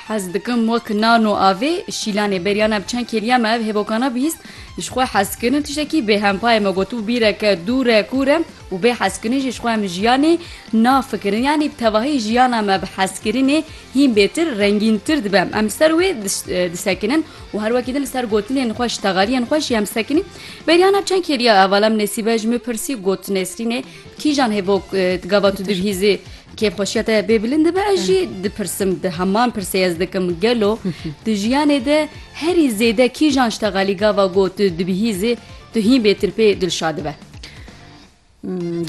Hez dikim wek nan û avê şîlanê beryana bi çend kêliya me ev hêbokana bihîst ji xwe hezkirin tiştekî bê hempayê me gotû bîreke dûr e kûr e û bê hezkirin jî ji xwe em jiyanê nafikirin yanî bi tevahî jiyana me bi hezkirinê hîn bêtir rengîntir dibe em li ser wê disekinin û her wekî din li ser gotinên xwe ji texaliyên xwe jî em sekinî beryana bi çend kêliya evalem nesîbe ji min pirsî got nesrînê Kîjan hevok gava tu dibihîzî kêfxweşiya te bê bilind dibe ez jî dipirsim di heman pirsê ez dikim gelo di jiyanê de herî zêde kîjan ji te xalî gava got tu dibihîzî tu hîn bêtirpê dilşa dibe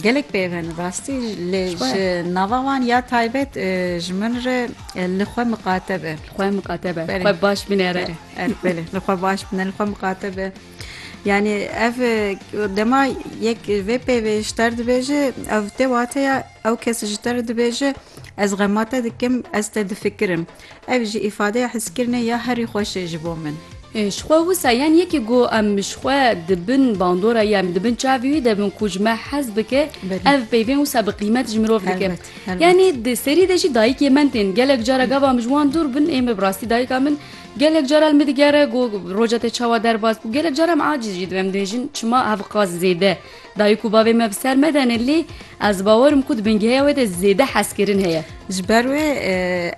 gelek pêven rastî lê ji nava wan ya taybet ji min re li xwe miqate be xwe miqate be xwe baş binêre li xwe baş bine li xwe miqate be Yani ev dema yek vê peyvê ji te re dibêje ev tê wateya ew kes ji te re dibêje ez xema te dikim ez te difikirim. Ev jî îfadeya hiskirinê ya herî xweşê ji bo min. Ji xwe wisa yan yekî ku em ji xwe di bin bandora yan di bin çavê wî de bin ku ji me hez bike ev peyvên wisa bi qîmet ji mirov dike. Yanî di serî de jî dayikê min tên gelek cara gava min ji wan dûr bin ê min bi rastî dayika min Gelek caran min digere ku roja te çawa derbas bû, gelek caran em acîz jî dibin, em dibêjin çima hevqas zêde dayik û bavê me bi ser me de ne lê ez bawer im ku di bingeya wê de zêde hezkirin heye. Ji ber wê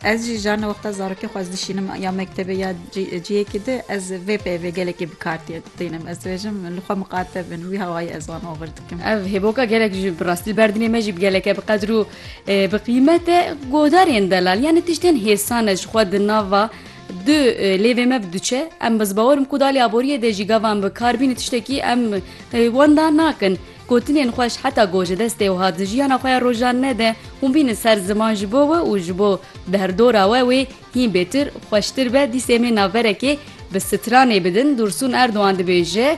ez jî carna wexta zarokê xwe ez dişînim ya mektebê ya ciyekê di ez vê peyvê gelekî bi kar tînim ez dibêjim li xwe miqate bin wî hawayî ez wan agir dikim. Ev hêboka gelek ji bi rastî li ber dilê me jî bi geleke bi qedir û Bi qîmete godarên delal yanî tiştên hêsane ji xwe di nava du lêvê me bi diçe em bi zibawer ku dalê aboriyê dê jî gavan bi kar bînî tiştekî em wenda nakin. Gotinên xweş heta goje destê wiha di jiyana xwe ya rojan nede hûn bînin ser ziman ji bo we û ji bo derdora we wê hîn bêtir xweştir be dîsê mê naverekê bi stranê bidin Dûrsûn Erdogan dibêje,